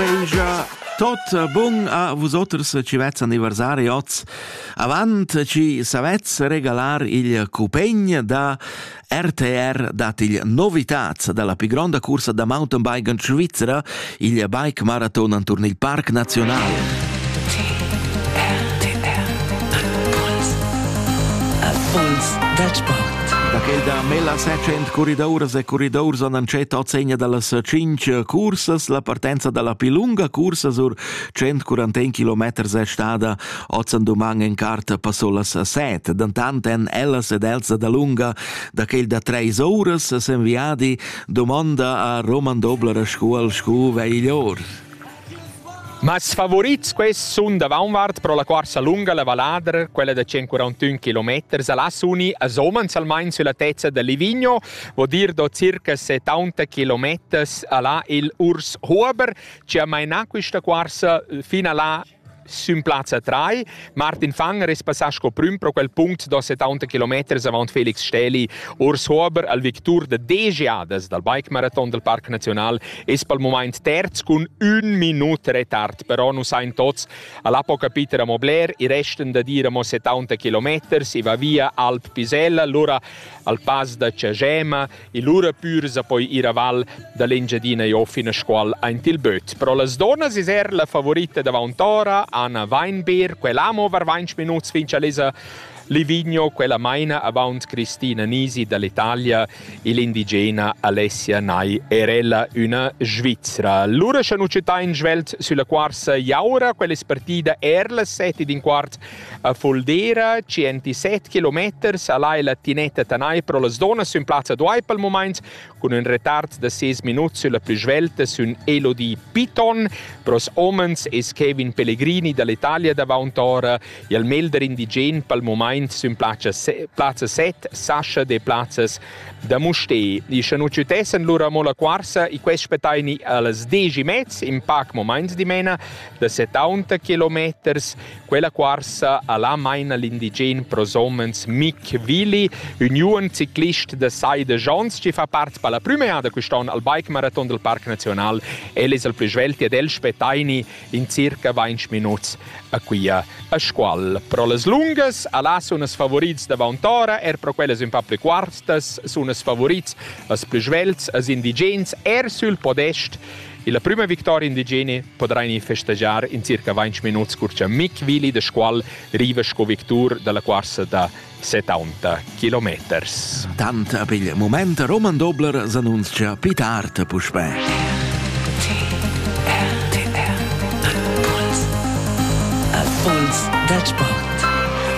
Belgia tot bun a vusoters ci vez anniversari oz avant ci savez regalar il cupegn da RTR dat il novità dalla più grande corsa da mountainbiken Svizzera il bike marathon an Tour il Parc Nazionale Impuls dal sport. Da quel da Mela Secent corridouras e corridours han entschet ozzegna dallas cinc cursas. La partenza dalla più lunga cursa sur 141 km è stada ozzan doman en cart passò las set. Dantant en ellas ed els da lunga da quel da treis ouras s'enviadi domonda a Roman Dobler a Scuol Scu Veglior. Mas favurits quests sun davaunvart pro la cuorsa lunga la valladra, quella da 141 km a las uni a Somans almain sulla tezza da Livigno, vo dir do circa 70 km a la il Urs Huber, ci ha mainà quista cuorsa fino a la Sün plazza 3. Martin Fanger es passà sco prüm pro quel punct da 70 km avant Felix Stähli ors Hober al victur da desch jadas dal bike marathon del Parc Nacional es pel momaint terz cun ün minut retard, però nu sain tots a l'Apo capiter amo bler, i resten da dir amo 70 km, si va via Alp Pisella, lura al Pass da Cagema, E lura pür sa poi ir a val da l'Engiadina e fin a Scuol aint il böt. Però las donas es er la favorita davaunt ora, Anna Weinberg, quella amo var 20 minuts fin cha l'esa Livigno, quella maina avaunt Cristina Nisi dall'Italia e l'indigena Alessia Nai Erella, una Svizzera. Lura scha nu citain svelt sulla quarsa Jaura, quella partida er las seti d'in quart A Fuldera, 107 kilometers, al hai la tinetta tanai pro las donas sün plazza Duai pel mumaint, cun ün retard da 6 minuts sülla plü svelta sün Elodie Piton, pros homens es Kevin Pellegrini dall'Italia davaunt ora e il melder indigen pel mumaint sün plazza, se- plazza 7, Sascha de Plazzas da Mustè. I scha nu ciutessan lura mo la quarsa e quest spetaini a las 10 mez, in pac mumaint dimena, da 70 kilometers, Quella cuorsa ha là maina l'indigen pros homens Mick Willi, uniun ciclist da sai de Jons, che fa part per la prima eada quest'on al bike marathon del Parc Nacional. El es el plü svelt ed el spettaini in circa 20 minuts a quia a scual. Pro las lungas a là sun els favorits davant ora, er pro quellas un pa pli cuartas sun els favorits als plü svelts, als indigens, er sül podest Illa prüma victoria indigene podrain ins festegiar in circa 20 minuts cur cha Mick Willi da Scuol riva sco victur da la cuorsa da 70 kilometers. Tant a pigl moment Roman Dobler s'annunzcha pli tard puspè. RTR. Puls dal sport.